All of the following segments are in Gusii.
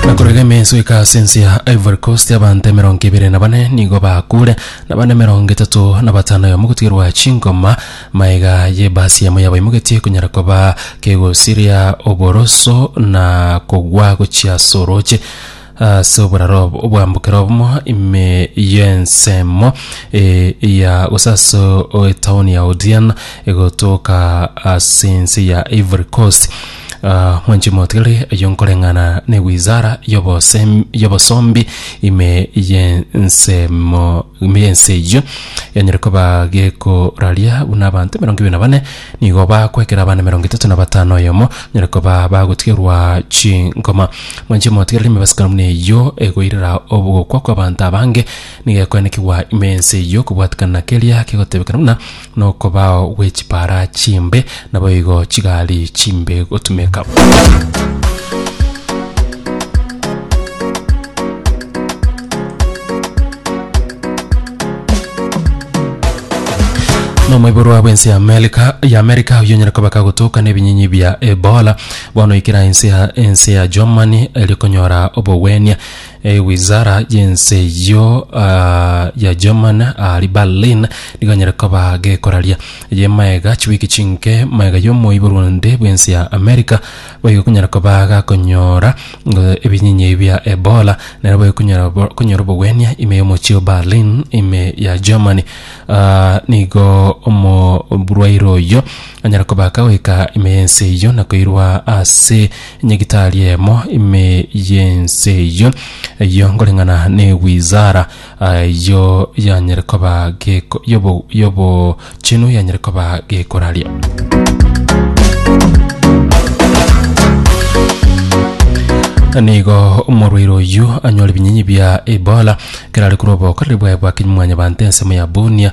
Nakorire emenso eka ase ense ya Ivory Coast abanto emerongo ebere na bane nigo bakure na bande emerongo etato na batano yamo gotigerwa chingoma maega y'ebasi yamo yabaimogetie konyara koba kegosiria oboroso na kogwa gochia ase oroche Ase oboraro obo obwambokera obumo ime y'ensemo eh, ya gose ase o- etaoni ya Odiana egotoka ase ense ya Ivory Coast Ah, mwanche motigari ayo nkoreng'ana n'ewizara y'obosem- y'obosombi ime y'ensemo ime y'ense eyio yanyare koba gekoraria buna abanto emerongo ebere na bane Nigo bakwekera abana emerongo etato na batano oyomo, nyare koba bagotigerwa chinkoma. Mwanche motigerere emebasibwa buna eyio egoirera obogokwa kw'abanto abange, nigo ekoenekigwa ime y'ense eyio okobwatikana na keria kegotebekana buna nokobao gwe chipara chimbe, naboigo chigari chimbe gotumeka. nomoiborwa bw'ense ya Amerika ya Amerika oyo onyare koba kagotoka n'ebinyinyi bia Ebola bono ikera ense ya ense ya Germany eri konyora obogwenia eh, wizara y'ense yo ah, ya German ari Berlin nigo onyare koba gekoraria ye maega chiwiki chinke maega y'omoiborwa onde bw'ense ya Amerika Baigokonyara koba agakonyora ebinyinya ebi bia Ebola, nere baigokonyara konyora obogwenia ime y'omochie o Berlin ime ya Germany. Ah, nigo omoburwaire oyio anyara koba akagoika ime y'ense eyio na koirwa ase nyagitari emo ime y'ense eyio, eyio nkoreng'ana ne wizara Ayio yanyare koba geko- yobo- yobochenu yanyare koba gekoraria. nigo omorwaire oyu anyore ebinyinyi bia ebola kerare korwa obokoreri bwaye bwa kinyumwanya bante ensemo ya bunia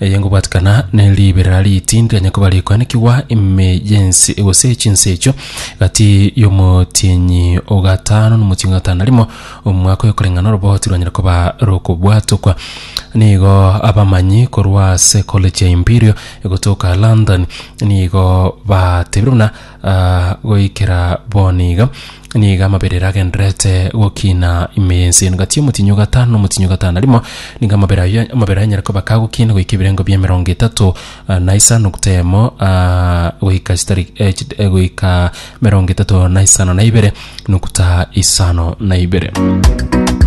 Eye ngobwatikana ne ribera riti ndiranye koba rikoanekigwa ime y'ense gose chinse echio, gati y'omotienyi o gatano na omotienyi o gatano na rimo, omwaka oyo koreng'ana orobao tirwanyare koba rokobwatokwa. Nigo abamanyi korwa ase College ya Imperial egotoka London nigo batebire buna ah, goikera bono iga Nigo amabera agendererete gokina ime y'ense eye. Gati omotinyu gatano na omotinyu gatano na rimo, nigo amabera aye amabera anyare koba ka gokina goika ebirengo bia emerongo etato ah, na isa nukta emo ah, goika chitari eh, chit- eh, goika merongo etato na isano na ibere nukta isano na ibere.